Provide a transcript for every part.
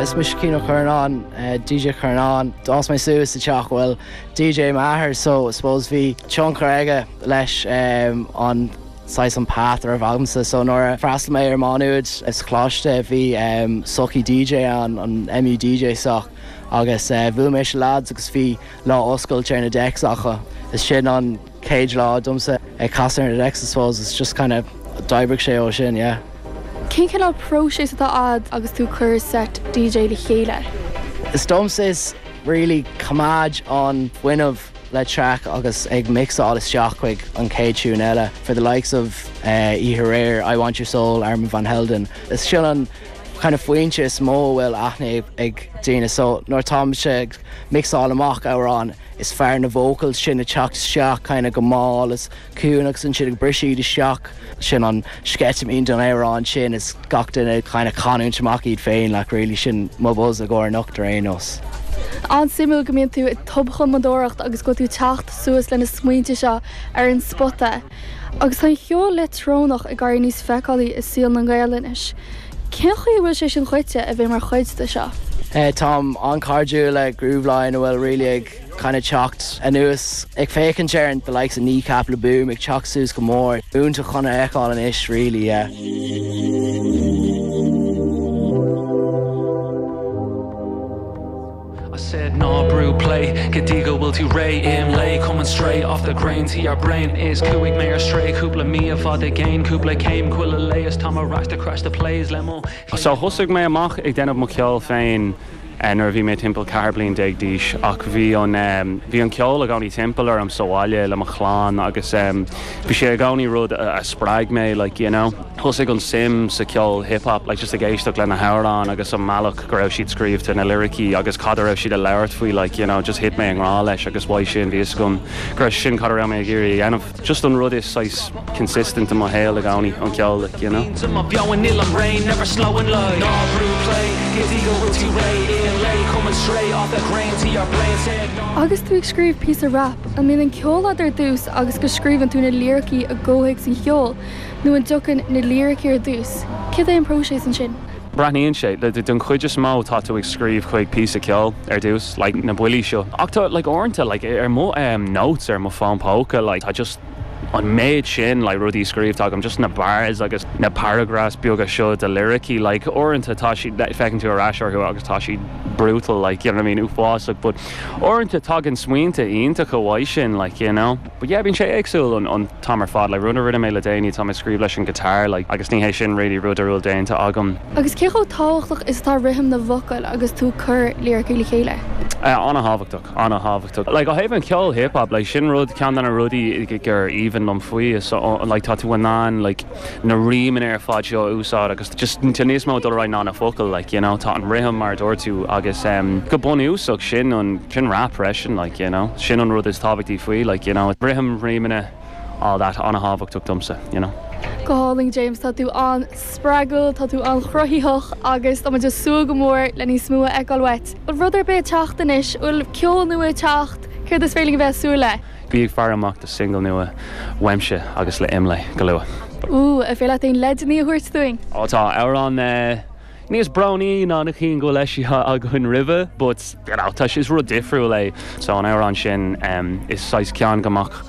Is mise Cian Ó Curnáin, DJ Curnáin. D'fhás mé suas sa teach a bhfuil DJ m'athair so I suppose bhí tionchar aige leis an saghas an path a raibh agamsa. So nuair a d'fhreastal mé ar Má Nuad sa choláiste bhí sochaí DJ ann, an MU DJ soc, agus bhuail mé leis na lads agus bhí lá oscailte ar na decks acu. Is sin an. chéad lá domsa ag casadh ar an decks I suppose it's just kind of d'oibrigh sé ó sin yeah. Cén cineál próiseas atá a'd agus tú ag cur seit DJ le chéile? Is domsa is really coimeád an fuinneamh le track agus ag mixeáil isteach chuig an chéad tiún eile for the likes of oíche aréir, I Want Your Soul, Armand Van Helden. Is sin an kind of foinse is mó a bhfuil aithne ag daoine so nuair táimse ag mixeáil amach amhrán, Is fearr na vocals sin a teacht isteach kind of go mall is ciúin agus ansin ag briseadh isteach. Sin an sceitimín don amhrán sin is gach duine ag kind of canúint amach iad féin like really sin mo buzz i gcomhair anocht ar aon nós. An-suimiúil go mbíonn tú ag tobchumadóireacht agus go bhfuil tú teacht suas le na smaointe seo ar an spota. Agus tá an cheol leictreonach ag éirí níos feiceálaí i saol na nGael anois. Cén chaoi a bhfuil sé sin dhuit a bheith mar chuid de seo? Táim an-chairdiúil le Grooveline a bhfuil really ag kind of teacht anuas. Ag féachaint ar an the likes of Kneecap, Le Boom ag teacht suas go mór. Iontach chun a fheiceáil anois really yeah. I said ná brú play go dtí go bhfuil tú réidh im lae Coming straight off the grain to your brain Is chuaigh mé ar strae cúpla mí i bhfad i gcéin Cúpla céim, chuile lae is tá mo rac to crash the place le mo chlé So thosaigh mé amach ag déanamh mo cheoil féin nuair a bhí mé timpeall ceathair bliain déag d'aois ach bhí an bhí an ceol i gcónaí timpeall orm sa bhaile le mo chlann agus bhí sé i gcónaí rud a spreag mé like you know. thosaigh an suim sa ceol hip hop like just ag éisteacht le na hamhráin agus an mbealach go raibh siad scríobhta na liricí agus cad a raibh siad a labhairt faoi like you know just thit mé i ngrá leis agus uaidh sin bhí fhios agam go raibh sin cad a raibh mé ag iarraidh a dhéanamh just an rud is saghas consistent i mo shaol i gcónaí an ceol like you know. Tá mé beo in ilm réidh never slowing like ná brú play go dtí go bhfuil tú réidh aon lae coming straight off the grain to your brain said ná Agus tú ag scríobh píosa rap, an mbíonn an ceol a'd ar dtús agus go scríobhann tú na liricí i gcomhthéacs an cheoil, nó an dtagann na liricí ar dtús, céard é an próiseas ansin? Breathnaíonn sé like den chuid is mó tá tú ag scríobh chuig píosa ceoil ar dtús, like na buillí seo, ach tá like uaireanta like ar mo em notes ar mo fón póca like tá just an méid sin like rudaí scríobhta agam, just na bars agus na paragraphs beaga seo de liricí like uaireanta tá siad feiceann tú ar ais orthu agus tá siad brutal like you know what I mean uafásach but uaireanta tagann smaointe iontacha uaidh sin like you know. But yeah, bíonn sé éagsúil an t-am ar fad. Like, rud a rinne mé le déanaí, tá mé ag scríobh leis an guitar, like, agus ní hé sin really rud a bhfuil déanta agam. Agus cé chomh tábhachtach is atá rithim na bhfocal agus tú cur líricí le chéile? Eh, an-thábhachtach, an-thábhachtach. Like, ó thaobh an cheoil hip-hop, like, sin rud, ceann de na rudaí gur aoibhinn liom faoi, is, like, tá tú in ann, like, na rímeanna ar fad seo a úsáid agus just tá níos mó dul ar aghaidh ná na focail like you know tá an rithim mar a dúirt tú agus em go bunúsach sin an sin rap freisin like you know sin an rud is tábhachtaí faoi like you know rithim rímeanna all that an-thábhachtach domsa you know. Go hálainn James, tá tú an-spreagúil, tá tú an-chruthaitheach agus tá muid ag súil go mór le níos mó a fheiceáil uait. Bhfuil rud ar bith ag teacht anois, bhfuil ceol nua ag teacht, céard is féidir linn a bheith ag súil le? Bígí ag faire amach do singil nua uaimse agus Imlé go luath. Ooh, an féidir leat aon leideanna a thabhairt dúinn? Ó tá amhrán níos brónaí ná na cinn go bhfuil eisithe againn roimhe but you know tá sé, is rud difriúil é so an amhrán sin is saghas ceann go mbeadh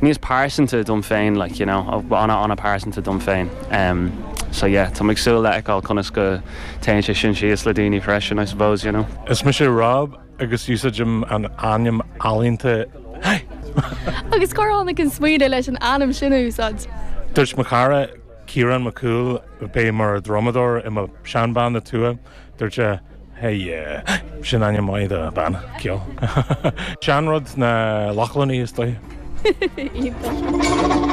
níos pearsanta dom féin like you know ana ana pearsanta dom féin so yeah táim ag súil le fheiceáil conas go dtéann sé sin síos le daoine freisin I suppose you know. Is mise Rob. agus úsáidim an ainm ealaíonta Hi! Agus cár tháinig an smaoineadh leis an ainm sin a úsáid? Dúirt mo chara, Ciarán Mac Cumhaill, a bhí mar dhrumadóir i mo sheanbhanna Tua, dúirt sé Hi! Sin ainm maith do bhanna ceoil. Sean-rud na Lochlannaigh is dóigh. Iontach.